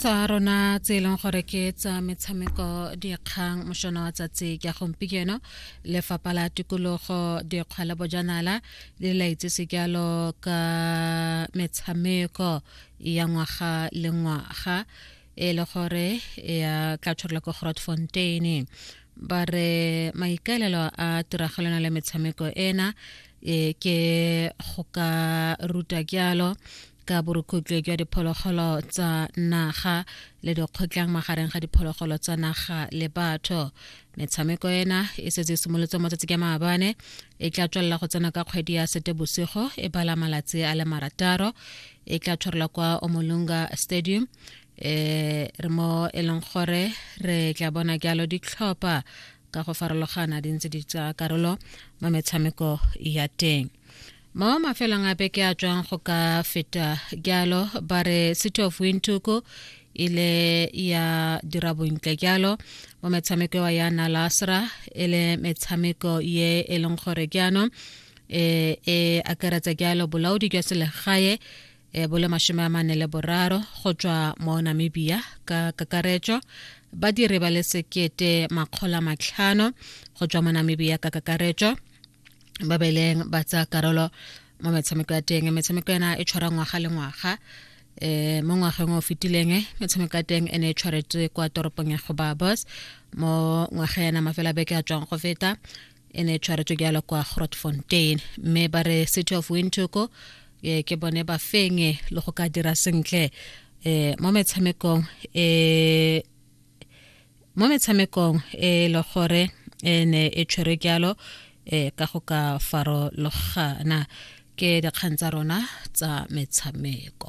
tsa rona tse e leng gore ke tsa metshameko dikgang mošona wa tsatsi ka gompieno lefapha la tikologo dikgwa le bojanala le laitse sekalo ka metshameko ya ngwaga le ngwaga e le gore ya tla tshwarela ko grotfontein ba re maikaelelo a tiragalona le metshameko ena e ke go ka ruta kyalo ka borukhutlwe jwa diphologolo tsa naga le dikgotlang magareng ga diphologolo tsa naga le batho metshameko ena e setse e simolotse matsatsi ka maabane e tla tswelela go tsena ka kgwedi ya sete bosigo e bala malatsi a le marataro e tla tshwarelwa kwa omolunga stadium um re mo e leng gore re tla bona jalo ditlhopha ka go farologana di ntse di tsaya karolo mo metshameko ya teng mo mafelong a beke a tswang go ka feta jalo ba re city of windhoek ile ya dira bontle jalo mo metshameko wa ya nalasra e le metshameko ye e leng gore jaanong e e akaretsa jalo bolaodi jwa selegae e bole mashome a mane le boraro go tswa mo namibia ka kakaretso badiri ba le sekete makgolo a matlhano go tswa mo namibia ka kakaretso ba beleng ba tsaya karolo mo metshameko ya teng metshameko ena e tshwara ngwaga le ngwaga eh mo ngwageng o fetileng eh, metshameko ya teng e ne e tshwaretswe kwa toropong ya gobabos mo ngwaga yana mafela beke a tswang go feta e ne e tshwaretswe jalo kwa grotfontein mme ba re city of wintoko eh, ke bone ba fenye le go ka dira sentle eh mo metshamekong eh mo metshamekong e le gore e ne e tshwerwe jalo e ka go ka farologana ke dikgang tsa rona tsa metshameko